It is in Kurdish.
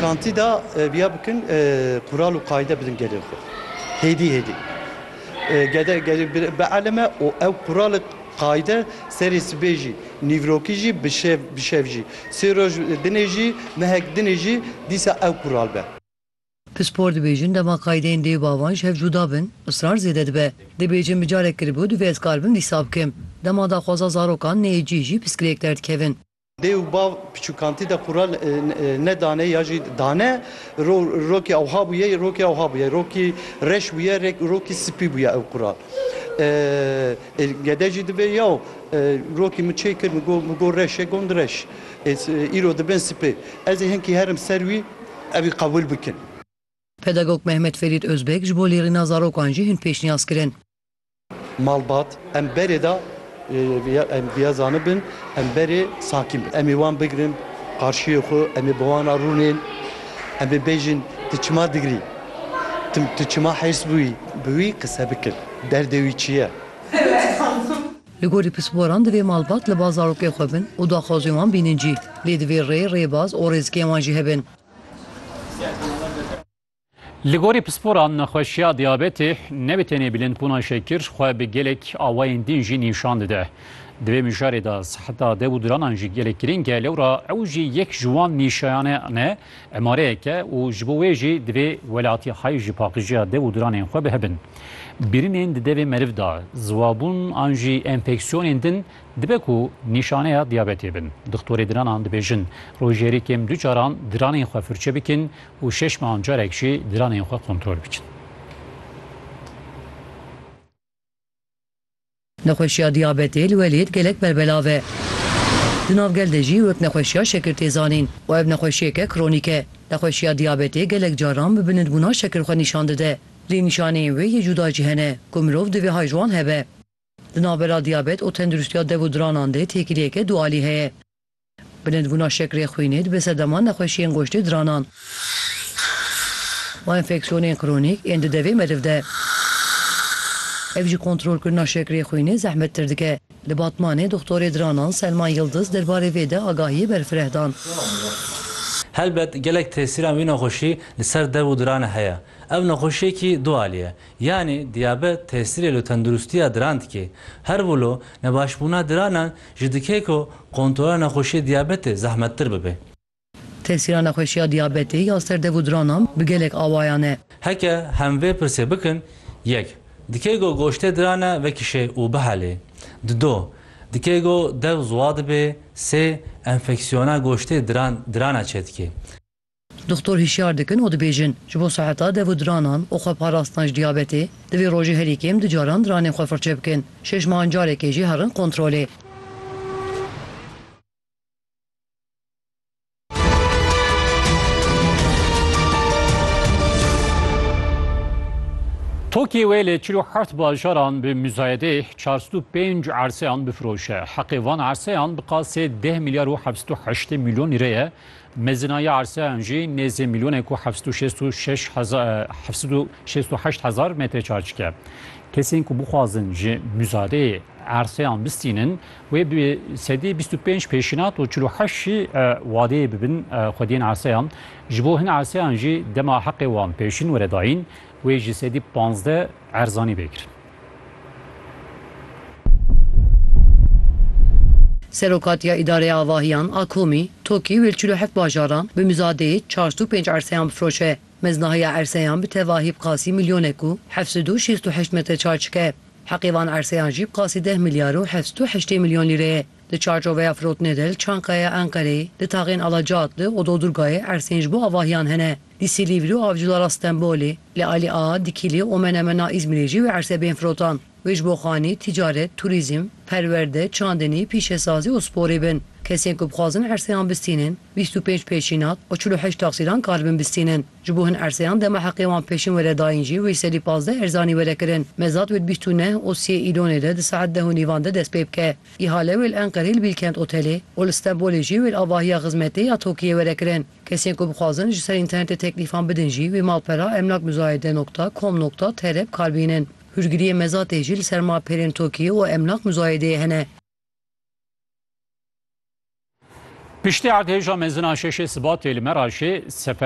Kantîda viya bikin qural û qayde bidin gelên xwe. Hêdî hêdî. Gede gelê bielime û ew qural û qayde serê sibê jî, nîvrokî jî, bi şev bi şev jî, sê roj dinê jî, mehek dinê jî dîsa ew qural be. Pispor dibêjin dema qaydeyên dê û bavan ji hev cuda bin, israr zêde dibe. Dibêjin bi carek kiribû, divê ez kar bim dîsa bikim. Dema daxwaza zarokan neyê cih jî piskirêk derdikevin. Dê û bav piçûkantî de qura nedane ya jî dane. Rokê ewha bûye, rokê ewha bûye. Rokî reş bûye, rokî spî bûye ew qura. Ê gede jî dibe yaw rokî min çê kir, min got reş e, gund reş. Îro dibin spî. Ez ê hinkî herim ser wî, ew ê qebûl bikin. Pedagog Mehmet Ferîd Ozbek ji bo lêrîna zarokan jî hin pêşniyaz kirin. Malbat, em berê de em diya zanibin, em berê sakîn bin. Em ê wan bigirin qarşiyê xwe, em ê bi wan re rûnên, em ê bêjin tu çima digirî, tu çima hêrs bûyî, bi wî qise bikin, derdê wî çi ye. Li gorî pisporan divê malbat li ba zarokê xwe bin û daxwazên wan bînin cî. Lê divê rê, rêbaz û rêzikên wan jî hebin. Li gorî pisporan nexweşiya diyabetê ne bi tenê bilindbûna şekir xwe bi gelek awayên din jî nîşan dide. Di vê mijarê de siheta dev û diranan jî gelek girîng e lewra ew jî yek ji wan nîşayanan e, emareyek e û ji bo wê jî divê welatî hay ji paqijiya dev û diranên xwe bihebin. Birinên di devê meriv de ziwabûn an jî enfeksiyonên din dibe ku nîşaneya diyabetê bin. Dixtorê diranan dibêjin rojêrî kêm du caran diranên xwe firçe bikin û şeş mehan carek jî diranên xwe kontrol bikin. Nexweşiya diyabetê li welêt gelek berbelav e. Di nav gel de jî wek nexweşiya şekir tê zanîn û ev nexweşiyeke kronîk e. Nexweşiya diyabetê gelek caran bi bilindbûna şekir xwe nîşan dide. Lê nîşaneyên wê yê cuda jî hene ku mirov divê hay ji wan hebe. Di navbera diyabet û tenduristiya dev û diranan de têkiliyeke dualî heye. Bilindbûna şekrê xwînê dibe sedema nexweşiyên goştê diranan û enfeksiyonên kronîk ên di devê meriv de. Ev jî kontrolkirina şekrê xwînê zehmettir dike. Li Batmanê doxtorê diranan Selman Yildiz derbarê vê de agahiyê berfireh dan. Helbet gelek tesîran wî nexweşî li ser dev û diran heye. Ev nexweşiyekî du alî ye. Yanî diyabet tesîrê li tendirustiya diran dike. Herwilo nebaşbûna diranan Ji dikê ku kontrola nexweşiyê diyabetê zehmettir bibe. Tesîra nexweşiya diyabetê ya ser dev û diranan bi gelek awayan e. Heke hem vê pirsê bikin, yek, dikê ku goştê diran e vekişê û bihelê? Dido, dikê ku dev ziwa dibê? Sê, enfeksiyona goştê diran dirana çêdikê? Doxtor hişyar dikin û dibêjin, ji bo seheta dev û diranan û xweparastina ji diyabetê, divê rojê herî kêm du caran diranên xwe firçe bikin, şeş mehan carekê jî herin kontrolê. Tokê wê li çil û heft bajaran bi muzayedê çar sed û pênc erseyan bifiroşe. Heqê van erseyan bi qasê deh milyar û heft sed û heştê milyon lîre ye. Mezinaya arseyan jî nêzî mîlyonêk û heft sed û şêst û şeş heza heft sed û şêst û heşt hezar metre çarçik e. Kesên ku bixwazin ji muzadeyê arseyan bistînin wê bi sedî bîst û pênc pêşînat û çil û heşt jî wadeyê bibin xwediyên arseyan. Ji bo hin arseyan jî dema heqê wan pêşîn were dayîn wê ji sedî panzdeh erzanî bê kirin. Serokatiya Îdareya Avahiyan a Komî, Tokî wê li çil û heft bajaran bi muzadeyê çar sed û pênc erseyan bifiroşe. Meznahiya erseyan bi tevahî bi qasî milyonek û heft sed û şêst û heşt metre çar çike. Heqê van erseyan jî bi qasî deh milyar û heft sed û heştê milyon lîre ye. Di çarçoveya firotinê de li Çankayaya Enqereyê, di taxên Alacaatli û Dodurgayê ersên ji bo avahiyan hene. Di Silivri û Avcılara Stenbolê, li Alî Ağa, Dikilî û Menemena Îzmîrê jî wê erse bên firotan. Wê ji bo xanî, tîcaret, turîzm, perwerde, çandinî, pîşesazî û sporê bin. Kesên ku bixwazin erseyan bistînin, bîst û pênc pêşînat û çil û heşt taksîran karibin bistînin. Ji bo hin erseyan dema heqê wan pêşin were dayîn jî wê serî pazdeh erzanî were kirin. Mezat wê di bîst û neh û siyê Îlonê de di saet deh û nîvan de dest pê bike. Îhale wê li Enqerê li Bîlkent Otelê û li Stenbolê jî wê li avahiya xizmetê ya TOKİ'yê were kirin. Kesên ku bixwazin ji ser înternetê teklîfan bidin jî wê malpera emlakmuzayede nokta com nokta tr bi kar bihînin. Hûrgiriyê Mezatê jî li ser malperên tokî û emlakmuzayedeyê hene. Piştî erdhêja mezin a şeşê Sibatê li Meraşê sefer